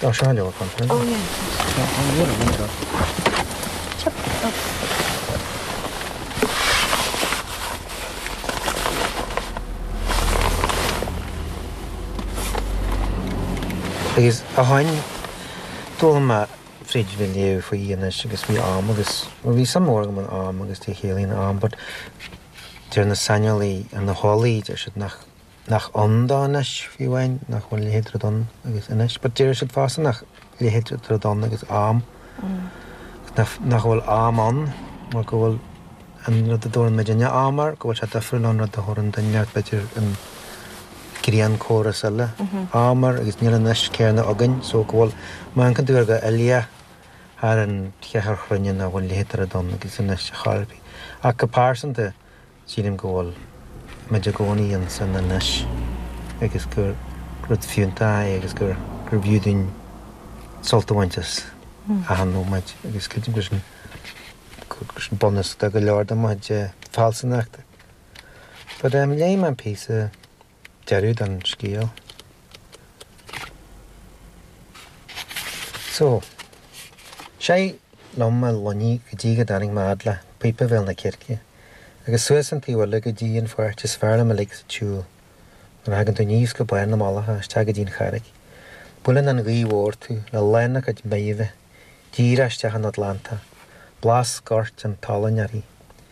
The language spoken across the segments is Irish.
Tá sé leabhar fanta aige. Oh yeah, it is. Tá leabhar aige anseo. Chuir sé seo as. Agus a tháinig d'fhoghlaim mé fríd a bheith ag léamh faoi fhianaise agus faoi am agus bhuel bhí suim mhór agam in am agus cad é a chiallaíonn am but deir na saineolaithe, na heolaithe deir siad nach nach ann do anois, fiú amháin nach bhfuil leithéid rud ann agus anois, but déarfadh siad fosta nach bhfuil leithéid rud ann agus am, agus nach bhfuil am ann mar go bhfuil an rud a dtabharann muidinne am air, go bhfuil sé difriúil ón rud a dtabharann duine ar b'fhéidir ar grianchóras eile am air agus níl anois céanna againn, so go bhfuil má amharcann tú air go huile thart ar an chruinne nach bhfuil leithéid rud ann agus anois chor ar bith. Ach go pearsanta, Sílim go bhfuil muid i gcónaí ins an anois agus gur rud fiúntach é agus gur bhfiú dúinn sult a bhaint as achan nóiméad agus creidim gur sin bunús de go leor de mo chuid fealsúnachta. But léigh mé an píosa. deireadh don scéal so. Shiúil liom mar Loinní go dtí go dtáinig mé fhad le píopa Bhéal na Circe, agus suas an taobh eile go dtí an pháirt is fearr liom uilig sa tsiúl. Nuair a thagann tú aníos go barr na Malacha isteach go dtí an Charraic, buaileann an ghaoth mhór tú le lán a cuid meidhre díreach isteach ón Atlantach, blas goirt an tsalainn uirthi.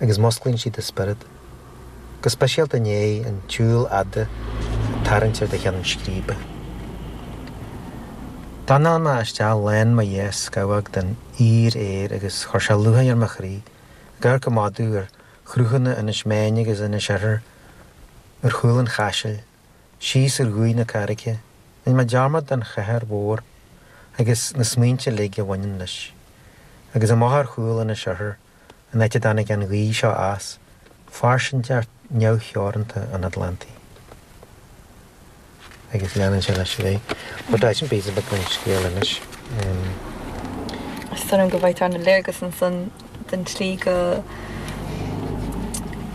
agus musclaíonn sí do spiorad, go speisialta i ndiaidh an tsiúil fhada ag tarraingt ar do cheann scríbe. D'análaigh mé isteach lán mo dhá scamhóg den fhíoraer agus chuir sé lúcháir ar mo chroí ag amharc amach uaim ar chruthanna Inis Méain agus Inis Oirthir ar chúl an Chaisil, síos ar Dhumhaigh na Carraige. Rinn mé dearmad den chathair mhór agus na smaointe uilig a bhaineann leis. Agus amach ar chúl Inis Oirthir. an áit a dtáinig an ghaoth seo as, fairsingeacht neamhtheoranta an Atlantaigh. Agus leanann sé leis uaidh sin, But that isn't bees a bit an scéal anois. Is dóigh liom go bhfaightear an léargas ansan den tslí go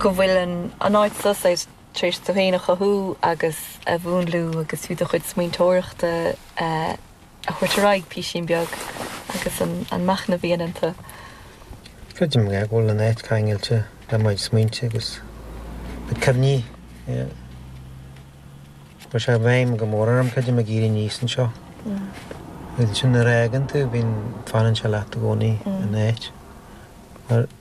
bhfuil an áit so saghas tar éis tú féin a chothú agus a mhúnlú agus fiú do chuid smaointeoireachta a thabhairt ar aghaidh písín beag agus an machnamh a dhéanann tú. Creidim go bhfuil an áit ceangailte le mo chuid smaointe agus na cuimhní a chuir sé i bhfeidhm go mór orm, creidim, ag éirí aníos anseo. Sin nuair a fhágann tú, bíonn, fanann sé leat i gcónaí, an áit.